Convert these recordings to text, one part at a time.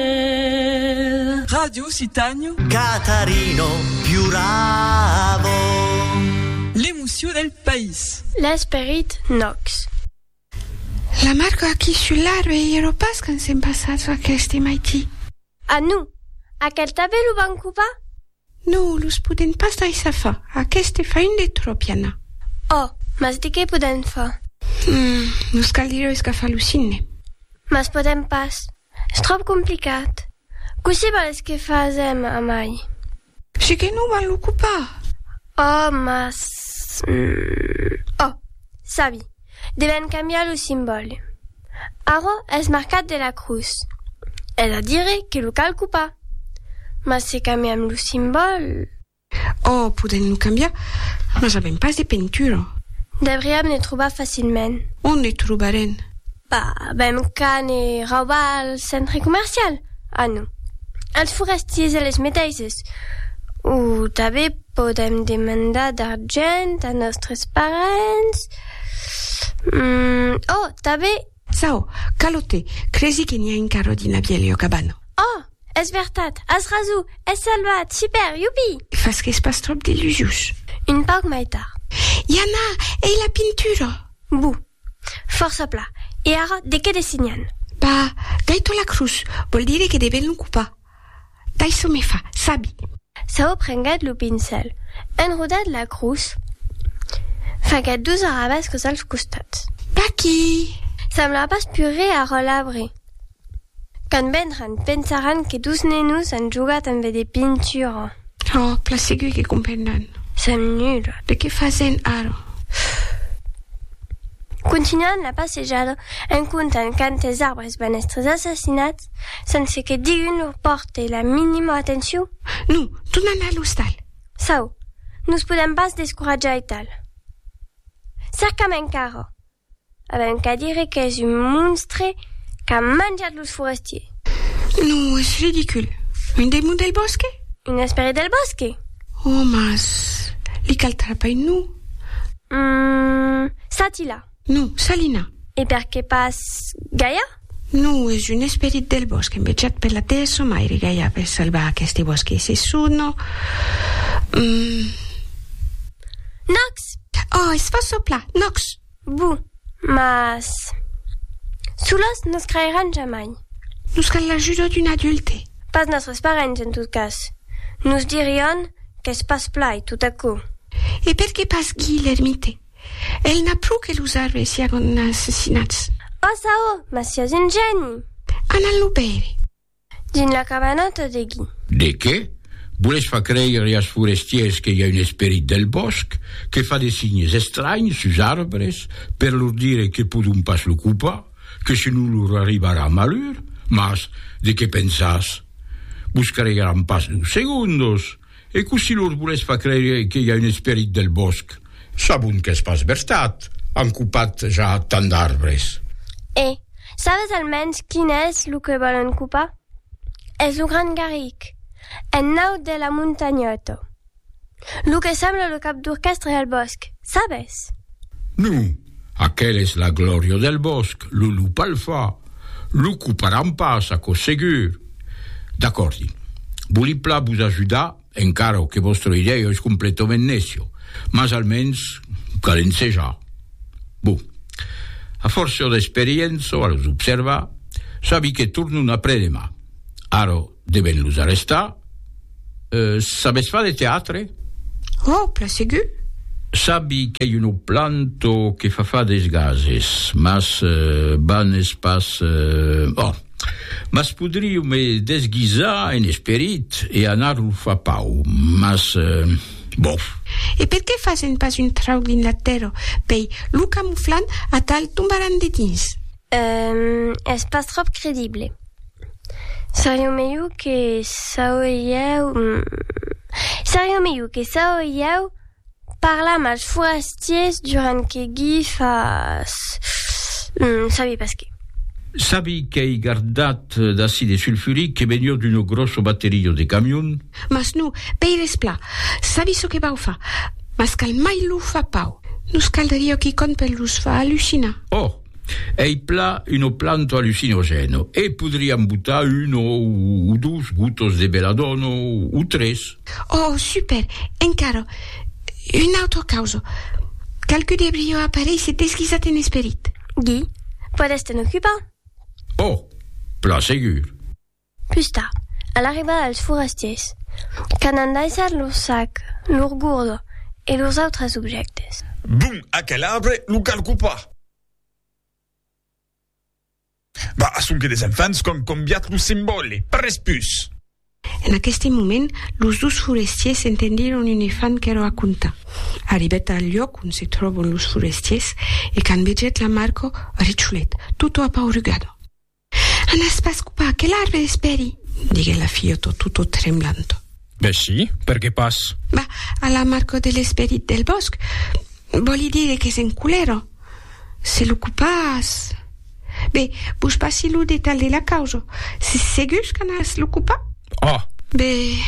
Vel. Ràdio Citanho. Catarino piuravo. L'emoció del país. L'esperit nòx. La marco aquí sul larro e iero pas quand s'en passatz aqueste maití. A nu! Aquel tavèlo van copar? No, los podèm pas daissar far, aqueste fain de tropiana. Oh! Mas de qué podèm far? Hum! Nos caldriá escafar lo cinne. Mas podèm pas, es tròp complicat. Cossí vales que fasèm, amai? Se que non van l'ocupar! Oh! Mas, hum! Oh! Sabi! devèn cambiar lo simbòle. Ara es marcat de la crus, es a dire que lo calco pas. Mas se cambiam lo simbòle? Ò, podèm lo cambiar, mas avèm pas de pentura. Deuriam ne trobar facilment. Ont ne trobarèn? Pas avèm qu'a ne raubar al centre comercial? A non. Als forestiers e les meteisses. O tanben podèm demandar d'argent a nòstres parents. Umm, oh, tabé! Sao, Calote, cresi que n'i a encara dins la vièlha cabana. Oh! Es vertat, as raso, es salvat! Super! Iupi! Fas qu'es pas tròp delusius. Un pauc mai tard. Jana, ei la pintura! Bou! Fòrça pla. E ara, de qué dessignan? Bah, Gaito Lacruz, vòl dire que devèn lo copar. D'aisò me fa, sabi. Saó prenguèt lo pincèl, enrodat la crus, faguèt dos arabescos als costats. D'aquí! Sembla pas pus re a relabre. Quand vendràn, pensaràn que dos nenos an jogat ambe de pintura. Ò, plan segur que comprendràn. Sèm nuls. De qué fasèm ara? Continuan la passejada en contant quantes arbres banèstres assassinats. Sense que digun o pòrte la minima atencion? Non, donan a l'ostal. Çau, nos podèm pas descoratjar e tal. Cercam encara. Avèm qu'a dire qu'es un monstre qu'a manjat los forestiers. Non, es ridicul. Un demon del bòsque? Un esperit del bòsque? Ò, mas li cal trapair, non? Hum, ça-t'y-là. Non, Salina. E per qué pas Gaia? Non, es un esperit del bòsc envejat per la dèessa maire Gaia per salvar aqueste bòsc e se sono... Nox! Oh, es fòrt soplar, Nox! Bu, mas... Solos nos creiràn jamai. Nos cal l'ajuda d'un adulte. Pas nòstres parents, en tot cas. Nos dirián qu'es pas plai, tot aquò. E per qué pas Guy l'ermite? El n'a pro que los arbres siágon assassinats. Passa, ò! Mas siás un gèni! Anam lo veire. Dins la cabana tot de gui. De qué? Voles far creire as forestiers que i a un esperit del bòsc que fa de signes estranhs sus arbres per lor dire que podon pas lo copar, que senon lor arribarà malur? Mas de qué pensas? Vos creiràn pas deu segondos! E cossí los volètz far crèire que i a un esperit del bòsc? Sabon qu'es pas vertat, an copat ja tant d'arbres. E sabes almens quin es lo que vòlon copar? Es lo Grand Garric, en naut de la Montanhòto. Lo que sembla lo cap d'orquèstre del bòsc, sabes? Non, Aquel es la glòria del bòsc, lo lup al fa, lo coparam pas, aquò segur. D'acòrdi. Vòli plan vos ajudar, encara que vòstra idèia es completament nècia, mas almens cal ensejar. Bon. A fòrça d'experiença, a los observar, sabi que tornon après-demà. Ara, Devèn los arrestar. Sabes far de teatre? Òh, plan segur! Sabi qu'ei un oplanto que fa far des gases, mas ban es pas... Òh! Mas podriu me desguisar en esperit e anar lo far pau, mas... Bof! E per qué fasen pas un trauc dins la tèrra? Pei, lo camuflan, atal tombaràn dedins. Ehm, es pas tròp credible. Seriá melhor que sauriáu, seriá melhor que sauriáu parlar mals forastiers durant que gui fas, sabi pas que. Sabi qu'ei gardat d'acide sulfuric que venió d'uno grosso batterio de camion? Mas non, pei desplat, sabi çò que vau far, mas cal mai lo far pau, nos caldriá quicòm per los far allucinar. Òh, Ei pla uno planto allucinogeno e podriam botar uno o dos gotos de beladono o tres. Oh, super! Encara una autra causa. Qualque de brio aparei se desguisat en esperit. Guy, podes te'n ocupar? Oh, pla segur. Pus tard, a l'arribada dels forastiers, qu'an endaissat lor sac, lor gourda e lors autres objèctes. Bon, aquel arbre lo calco pas. Bah, sonque des enfants qu'an cambiat lo simbòle, pas res pus. En aqueste moment, los dos forestiers s'entendiron un efant que lo raconta. Arribèt al luòc ont se tròbon los forestiers e quand vegèt la Marco, recholet, tota apaurugada. Anas pas copar que l'arbre espèri? diguèt la filhota tota tremblanta. Ben si, per qué pas? Bah, a la marca de l'esperit del bòsc, vòli dire que se'n colèra. Se lo copas... Be, vos passi lo detalh de la causa. Sis segurs qu'anas lo copar? Ah! Be,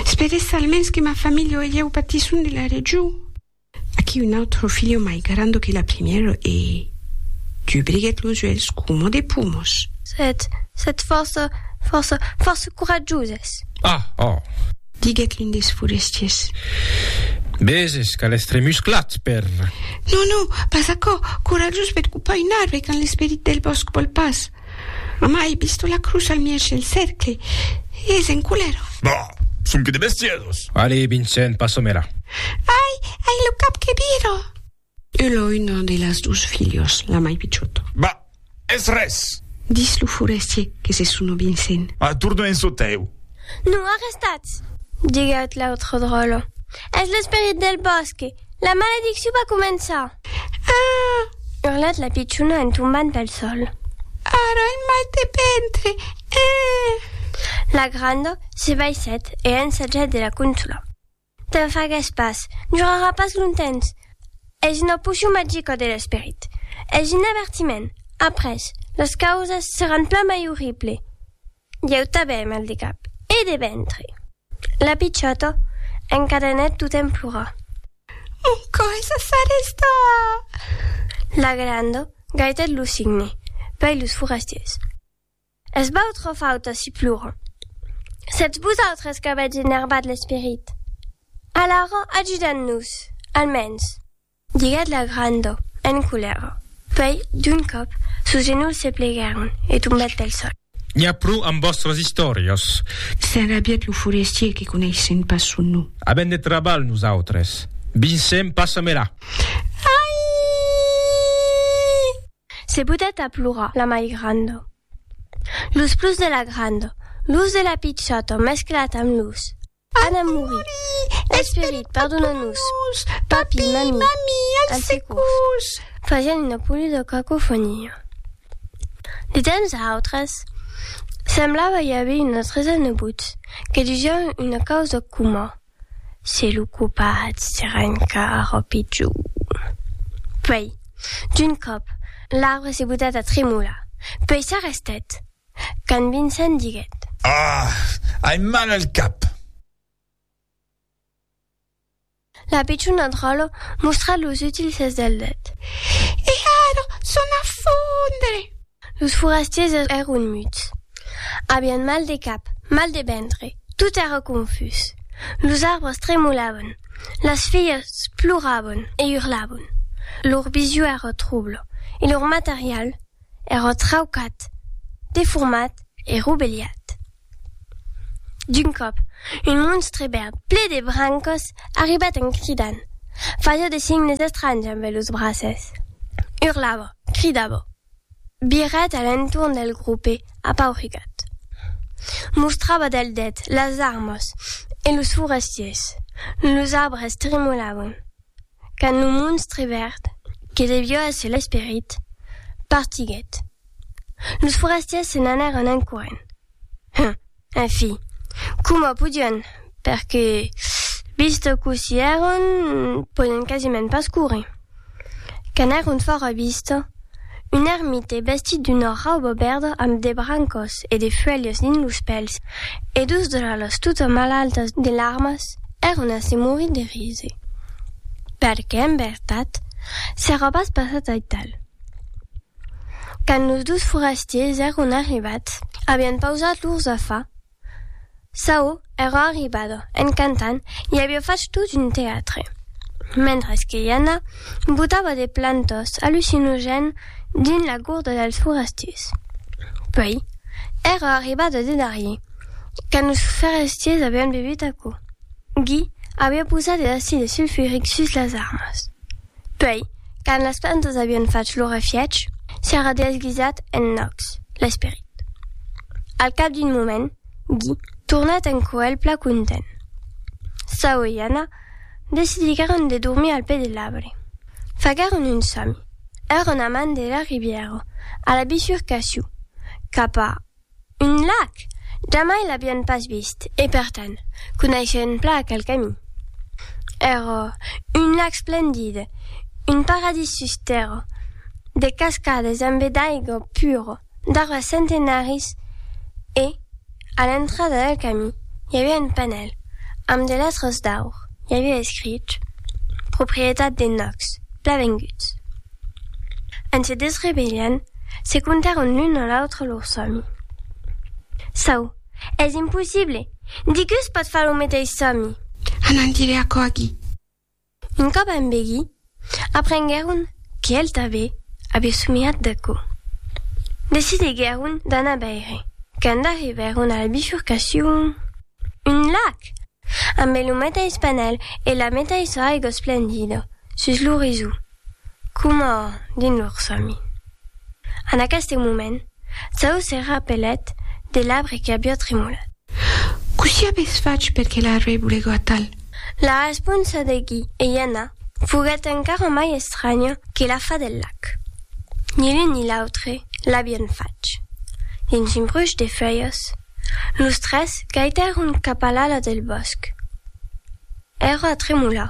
esperessa almens que ma familha e ieu patisson de la region. Aquí un autro filho mai grando que la primièro e dubriguèt los uèlhs coma de pumos. Sètz, sètz fòrça, fòrça, fòrça coratjoses. Ah! Oh! Diguèt l'un des forestiers. Veses qu'a l'èstre musclat per. Non, non, pas aquò! Coratjós per copar un arbre quand l'esperit del bòsc vòl pas. Amai bisto la crucha al mièg del cercle. Es en culèra. Bah! Sonque de bestièdos! Alé, Vincent, passa-me-la. Ai! Ai lo cap que vira! Elo un de las dos filhos, la mai pichòt. Bah! Es res! Dis lo forestier que se sono Vincent. A torna en çò tèu. Non arrestats! Diguèt l'autre dròlle. Es l'esperit del bòsque. La maledicciu va començar! Aah! Urlat la pichona en tombant pel sol. Ara un mal de ventre! Eeh! La granda se baissèt e ensajèt de la consolar. Te'n fagues pas, durarà pas longtemps. Es una pocion magica de l'esperit. Es un avertiment. Après, las causas seràn plan mai orrible. Ieu tanben mal de cap e de ventre. La pichòta encadenèt totemp plorar. Mon còr es a sa rèsta! La granda gaitèt lo signe pei los forestiers. Es vautra fauta si ploran. Sètz vosautres qu'avètz enervat l'esperit. Alara ajudan-nos, almens. Diguèt la granda, en colèra. Puèi, d'un còp, sos genolhs se pleguèron, e tombèt pel sòl. N'i a pro amb vòstras istòrias! S'enrabièt lo forestier que coneissèm pas son nom. Avèm de trabalh nosautres. Vincent, passa-me-la! Aii! Se botèt a plorar la mai granda. Los plors de la granda, los de la pichòta mesclats amb los. Ana mouri. Esperit, pardona-nos. Papi, mami, al securs. Fasián una polida cacofonia. De temps a autres, semblava i aver una tresa nebots que disián una causa coma, Se lo copat se renca ara pitjor. Puèi, d'un còp, l'arbre se botèt a tremolar, puèi s'arrestèt, Quand Vincent diguèt. Ah! Ai mal al cap! La pichona dròla mostrat los utils ses del det. E ara son a fondre! Los forastiers èron muts. Avián mal de cap, mal de ventre, tot èra confús. Los arbres tremolavan, las filhas ploravan e urlavan. Lor vision èra trobla, e lor material, èra traucat, deformat e robelhat. D'un còp, un monstre verd ple de brancas arribat en cridant, fasiá de signes estranhs ambe los braces, urlava, cridava, virat a l'entorn del grope apaurigat, mostrava del det las armas e los forestiers, los arbres tremolavan, Quand lo monstre verd, que devió èsser l'esperit, partiguèt, los forastièrs se n'anèron en corrent. Hum! En fi, coma podián, perque, vist cous i èron, podián quasiment pas córrer. Quand èron fòra vista, Un ermite vestit d'una rauba verda amb de brancas e de fuèlhas dins los pèls e dos dralas tota malaltas de larmas èran a se morir de rire. Perque, en vertat, s'èra pas passat aital. Quand los dos forastiers èran arribats, avián pausat lors afars. Saó èra arribada en cantant e aviá fach tot un teatre, mentres que Iana botava de plantas allucinogènes dins la gorda dels forestiers. Puèi, èra arribada de darrier, quand los forestiers avián bevut aquò. Guy aviá posat de l'acide sulfuric sus las armas. Puèi, quand las plantas avián fach lo refièch, s'èra desguisat en Nox, l'esperit. Al cap d'un moment, Guy tornèt en coèlh plan content. Saul e Anna decidiguèron de dormir al pè de l'arbre. Faguèron un sòmi, èran a man de la ribièra, a la bissurcacion, cap a. Un lac! Jamai l'avián pas vist e, per tant, coneishen plan aquel camin. Ero un lac splendid, un paradís sus tèrra, de cascades ambe d'aiga pura, d'arbres centenaris e, a l'entrada del camin, i aviá un panèl, amb de letras d'aur, i aviá escrich, Proprietat de Nox, Plavenguts. En se desrevelhant, se contaron l'un a l'autre lor sòmi. Çau, es impossible! Diguus pòt far lo meteis sòmi! A n'en dire aquò aquí! Un còp a Mbegi, aprenguèron qu'el tanbe aviá somiat d'aquò. Decidiguèron d'anar veire. Quand arribèron a la bifurcacion, un lac! Ambe lo meteis panèl e la meteissa aiga esplendida sus l'orizon. Coma dins lor sòmi. En aqueste moment, Zao se rapelèt de l'arbre que aviá tremolat. Cossí avètz fach per que l'arbre volègo atal? La responsa de Gui e Iana foguèt encara mai estranya que la fa del lac. Ni l'un ni l'autre l'avián fach. Dins un bruch de feuilhas, los tres gaitèron cap a l'ala del bòsc. Èra a tremolar.